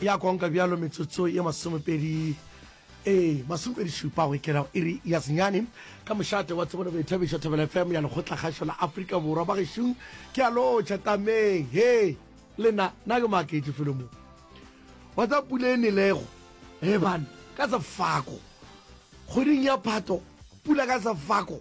ya konka bjalo metsotso ye masomepedi ee masomepedi šupa go ikela go iri ya senyane ka mošate wa tsebone boithabišo thobela fm ya lekgotla kgašo la afrika borwa ba gešung ke a lotšha tameng he lena na ke maketše felo mo wa tsa pula e nelego he bane ka sefako kgweding ya phato pula ka sefako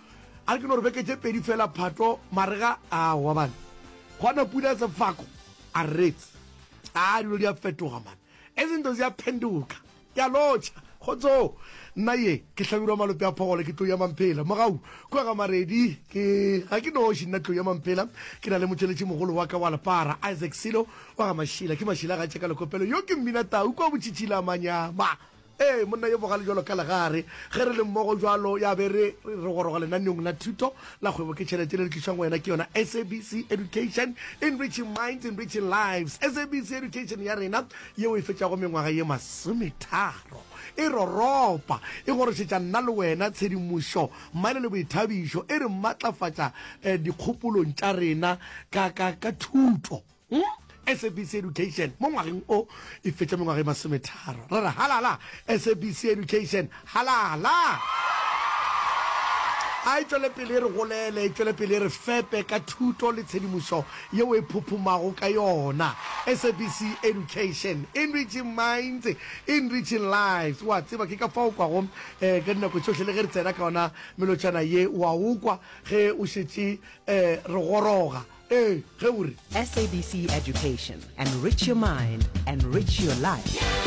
A re ke no re beke tše pedi fela Phato marega a wa man. Gona pula sefako a rrets. Aa dilo di a fetoga man. E se nto zia phenduka. Ke a lotšha. Kgotsoo. Nna ye ke hlabirwa malope a phogolo ke Tlou ya Mamphela. Mogau kua ga Maredi ke ga ke noši nna Tlou ya Mamphela ke na le motšweletši mogolo wa ka wa lepara Isaac Silo wa ga Mašila. Ke Mašila ga tšeka lekopelo yo ke Mmina Tau kua Botšhitšhila Manyama. Ee, monna yo bogale jalo ka legare. Ge re le mmogo jalo, ya be re re goroga lenaneong la thuto la kgwebo ke tšhelete le le tlišwang go wena ke yona SABC Education, Enriching Minds, Enriching Lives. SABC Education ya rena yeo e fetšago mengwaga ye masometharo e roropa, e gorošetša nna le wena tshedimošo mmaele le boithabišo, e re matlafatša dikgopolong tša rena ka, ka, ka thuto. Go SABC Education mo ngwageng o e fetša mengwaga e masometharo. Re re halala SABC Education, halala! A e tšwele pele e re golele, e tšwele pele e re fepe ka thuto le tshedimošo yeo e phophomago ka yona. SABC Education, enriching minds, enriching lives. O a tseba, ke ka fao o kwago ka dinako tšohle le ge re tsena ka yona melotšana ye, o a o kwa ge o šetše re goroga. Ee, ge o re. SABC Education. Enrich your mind. Enrich your life.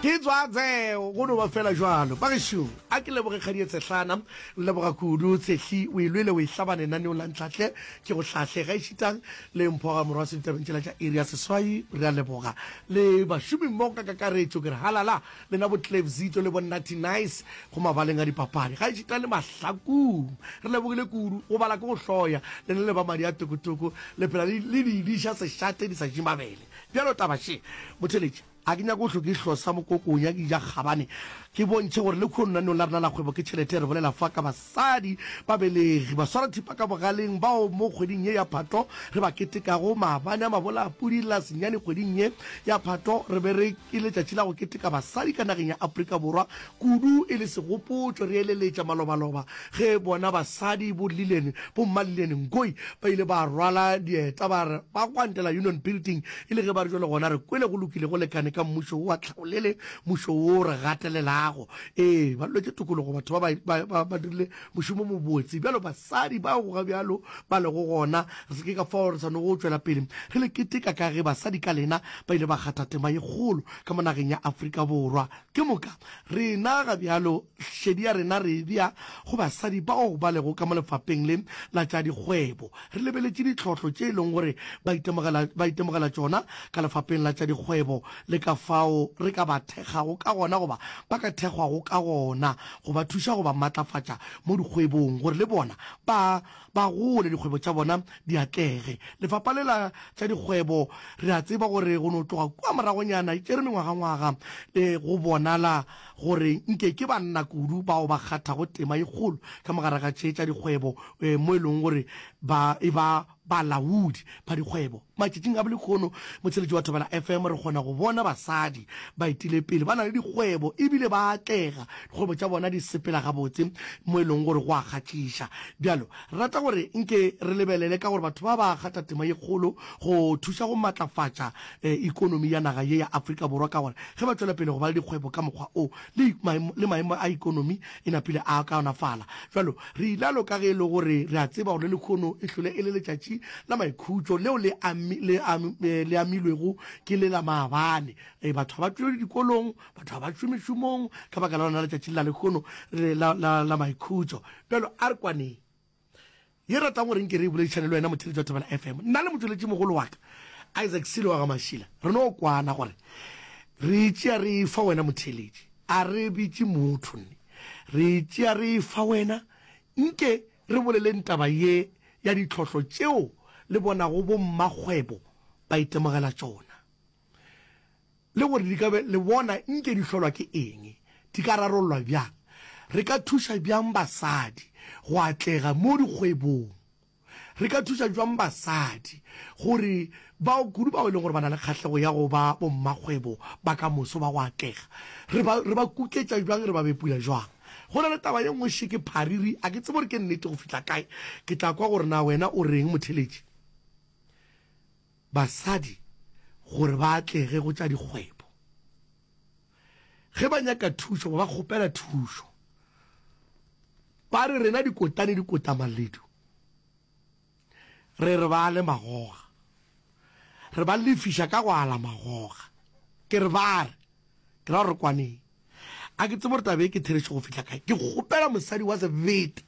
ke tswa tseo go no ba fela jalo ba gešo a ke leboge kgadie tshehlana leboga kudu tshehli o ilwele o e hlaba lenaneong la ntlhahle ke go hlahle ga ešitang le mphoga morwa se ditabeng tšela tša iri ya seswai re a leboga le bašomimmogo ka kakaretšo ke re halala Lena bo Clevzito le bo Natty Nice go mabaleng a dipapadi. Gaešita le mahlakung, re lebogile kudu. Go bala ke go hloya. Lena le ba madi a tokotoko le phela le di diša sešate di sa je mabele. Bjalo taba še, Motheletši. A ke nyake go hlo ke hlosa mokokonya ke ja kgabane ke bontšhe gore le khuononanong la rena la kgwebo ke tšhelete, re bolela fa ka ba. Batsadi, babelegi, baswarathipa ka bogaleng bao mo kgweding ye ya Phatho re ba ketekago, maabane a mabola a pudi la senyane kgweding ye ya Phatho re be re e letšatši la go keteka basadi ka nageng ya Afrika Borwa, kudu e le segopotšo re eleletša malobaloba ge bona basadi bo Lillian, bo mma Lillian Ngoyi ba ile ba rwala dieta ba re ba gwantela Union Building e le ge ba re bjale gona re kwele go lokile go lekane ka mmušo wo wa tlhaolele, mmušo wo o re gatelelago. Ee, ba lwetše tokologo, batho ba ba, ba, ba, ba dirile mošomo o mobotse. Bjalo basadi ba go ga bjalo ba lego gona, re se ke ka fao re swanetšego go tšwela pele re le keteka ka ge basadi ka lena ba ile ba kgatha tema ye kgolo ka mo nageng ya Afrika Borwa. Ke moka rena ga bjalo šedi ya rena re e bea go basadi bao ba lego ka mo lefapheng le la tša dikgwebo. Re lebeletše ditlhohlo tše e leng gore ba itemogela, ba itemogela tšona ka lefapheng la tša dikgwebo le ka fao re ka ba thekgago ka gona goba ba ka thekgwago ka gona, go ba thuša go ba matlafatša mo dikgwebong gore le bona ba ba gole, dikgwebo tša bona di atlege. Lefapha le la tša Dikgwebo, re a tseba gore go no tloga kua moragonyana e tšere mengwagangwaga le go bonala gore nke ke banna kudu bao ba kgathago tema ye kgolo ka mogare ga tše tša dikgwebo mo e lego gore ba e ba Balaodi ba dikgwebo matšatšing a bolehono motsheletši wa Thobela FM re kgona go bona basadi baetilepele ba na le dikgwebo e bile ba atlega, dikgwebo tša bona di sepela gabotse mo e lego gore go a kgatšiša. Bjalo rata gore nke re lebelele ka gore batho ba ba gata tema ye kgolo go thuša go matlafatša ikonomi ya naga ye ya Afrika Borwa ka gore ge ba tšwela pele go ba le dikgwebo ka mokgwa o le maemo a ikonomi E napile a kaonafala. Bjalo, re ilalo ka ge e le gore re a tseba gore lekhono e hlole e le letšatši la maikhutšo leo le ami, le ami, le amilwego ke le la maabane. Ee, batho ga ba tšwelele dikolong, batho ga ba tšwe mešomong ka baka la lona letšatši le la lekhono le la, la, la maikhutšo. Bjalo, a re kwaneng. Ye ratang gore nke re e boledišane le wena motšheletši wa Thobela FM. Nna le motšweletši mogolo wa ka Isaac Silo wa ga Mashila re no kwana gore re e tšea re e fa wena motšheletši. A re bitše motho nne re e tšea re e fa wena. Nke re boleleng taba ye ya ditlhohlo tšeo le bonago bo mmakgwebo ba itemogela tšona. le gore di ka be le bona nke di hlolwa ke eng, di ka rarollwa bjang, re ka thuša bjang basadi go atlega mo dikgwebong, re ka thuša bjang basadi gore bao kudu bao e leng gore ba na le kgahlego ya go ba bommakgwebo ba ka moso ba go atlega re ba, re ba kuketša bjang, re ba bepula bjang. Go na le taba ye nngwe še ke phariri, a ke tsebe gore ke nnete go fihla kae, ke tla kwa gore na wena o reng, Motheletši. basadi gore ba atlege go tša dikgwebo. Ge ba nyaka thušo ba ba kgopela thušo. Ba re rena dikotane di kota maledu, re re ba ale magoga, re ba lefiša ka go ala magoga. Ke re ba re, ke ra gore kwaneng. A ke tsebe gore taba e ke therešo go fihla kae. Ke kgopela mosadi wa sebete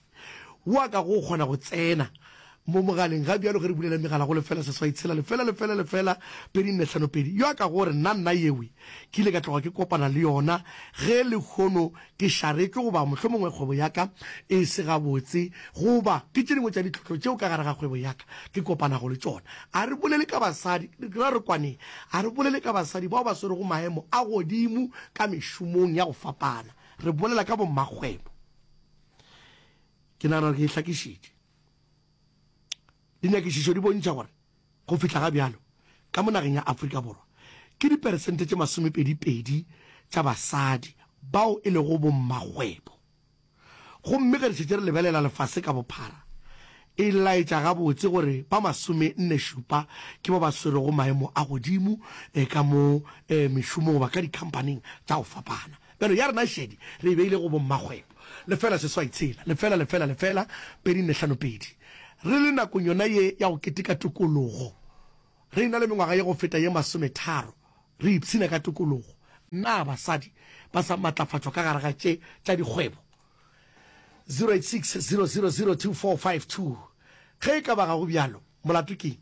wa ka go kgona go tsena mo mogaleng ga bjalo ge re bulela megala go lefela seswai tshela lefela lefela lefela pedi nne hlano pedi yo a ka gore nna nna yewe ke ile ka tloga ke kopana le yona ge lekgono ke šaretšwe goba mohlomongwe kgwebo ya ka e se gabotse goba ke tše dingwe tša ditlhohlo tšeo ka gare ga kgwebo ya ka ke kopanago le tšona a re bolele ka basadi ra re kwaneng Ga re bolele ka basadi bao ba swerego maemo a godimo ka mešomong ya go fapana, re bolela ka bommakgwebo. Ke nagana gore ke e hlakišitše. Dinyakišišo di bontšha gore go fihla ga bjalo, ka mo nageng ya Afrika Borwa, ke diperesente tše masomepedi pedi tša basadi bao e lego bommakgwebo. Gomme ge re šetše re lebelela lefase ka bophara, e laetša gabotse gore ba masomenne-šupa ke ba ba swerego maemo a godimo ka mo mešomong goba ka dikhamphaning tša go fapana. Bjalo, ya rena šedi re e beile go bommakgwebo. Lefela seswai tshela, lefela, lefela, lefela, pedi nne hlano pedi. Re le nakong yona ye ya go keteka tokologo. Re e-na le mengwaga ya go feta ye masometharo Re ipshina ka tokologo. Na basadi ba sa matlafatšwa ka gare ga tše tša dikgwebo? 086 000 2452 Ge e ka ba ga go bjalo, molato ke'ng?